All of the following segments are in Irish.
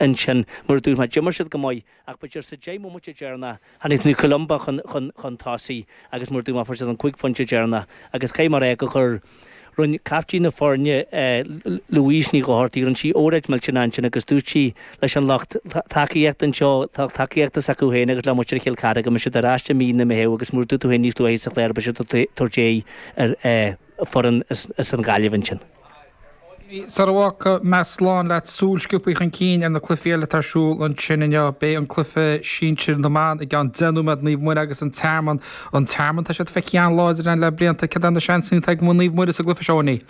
ansin. Mar a dúirt mé, d'imir siad go maith, ach b'fhéidir sa deich mbomaite deireanach, tháinig Naomh Columba chun chun tosaigh agus mar a dúirt mé fuair siad an cúig phointe deireanach agus caithfidh mé a rá go gur rinn caiftín na foirne, Louise Ní Dhochartaigh, rinne sí óráid mhillteanach ansin agus dúirt sí leis an lucht tacaíochta anseo, lucht tacaíochta s'acu féin agus le muintir Chill Cartha go mbeidh siad ar ais i mí na Meitheamh agus mar a dúirt tú féin níos luaithe sa chluiche beidh siad ag tabhairt aghaidh ar foireann as an Ghaillimh ansin. Owenie, Sar a bhfágfaidh mé slán leat, súil sciobtha chun cinn ar na cluichí eile atá ar siúl ansin inniu. Beidh an cluiche sinsir na mban i gceann deich nóiméad, Naomh Muire agus an Tearmann. An Tearmann, tá siad feicthe an-láidir ann le blianta. Cad é na seansanna atá ag Naomh Muire sa gcluiche seo, Owenie?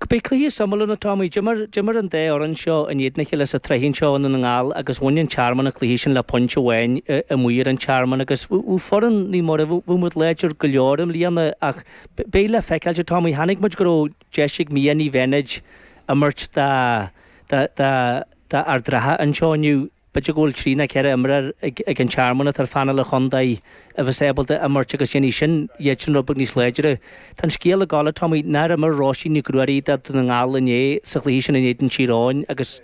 Beidh cluiche suimiúil ann, a Tommy. D'imir, d'imir an dá fhoireann seo in éadan a chéile sa tsraith anseo i nDún na nGall agus bhain an Tearmann an cluiche sin le pointe amháin amuigh ar an Tearmann agus bhí foireann Naomh Muire, bhí muid láidir go leor i mbliana ach beidh le feiceáil, a Tommy. Chonaic muid go raibh deis ag Mia Ní Bheannaid imirt do, do, do, do Ard Ratha anseo inniu. B'fhéidir go bhfuil trí nó ceithre imreoir ag an Tearmann atá ar phainéal an chontae a bheas ábalta imirt agus déanfaidh sin iadsan rud beag níos láidre. Tá an scéal ag gabháil thart, Tommy, nár imir Róisín Nic Ruairí do Dhún na nGall inné sa chluiche sin in éadan Thír Eoghain agus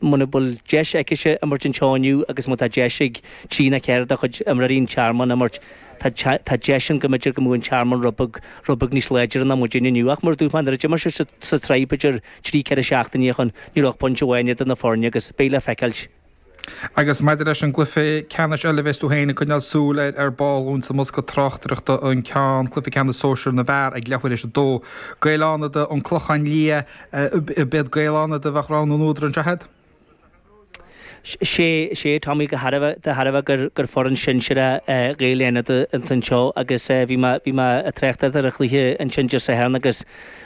muna bhfuil deis aicise imirt anseo inniu agus má tá deis ag trí nó ceithre de chuid imreoirí an Tearmainn imirt tá deis ann go mb'fhéidir go mbeadh an Tearmann rud beag níos láidre ná muid inniu. Ach mar a dúirt mé nuair a d'imir siad sa tsraith b'fhéidir trí ceithre seachtainí ó shin, ní raibh ach pointe amháin idir na foirne agus beidh le feiceáil. Agus maidir leis an gcluiche ceannais eile, bheas tú féin ag coinneáil súil air ar ball dúinn sa mbosca tráchtaireachta an ceann, Cluiche Ceannais Sóisir na bhFear ag leathuair tar éis a dó. Gaeil Fhánada, An Clochán Liath, B'iad Gaeil Fhánada a bheadh rogha na n-údar, nach iad? Sea, a Tommy de thairbhe gur foireann shinsear Ghaeil Fhánada an fhoireann seo agus bhí mé ag trácht ar an chluiche ansin Dé Sathairn agus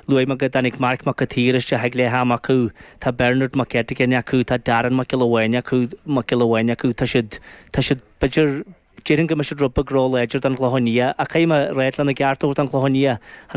luaigh mé go dtáinig Marc Mac an tSaoir isteach ag leath ama acu, tá Bernard Mac Eiteagáin acu, tá Darren Mac Giolla Bháin acu, Mac Giolla Bháin acu, tá siad, tá siad, b'fhéidir, déarfainn go mbeidh siad rud beag róláidir don Chlochán Liath ach caithfidh mé a rá lena gceart a thabhairt don Chlochán Liath.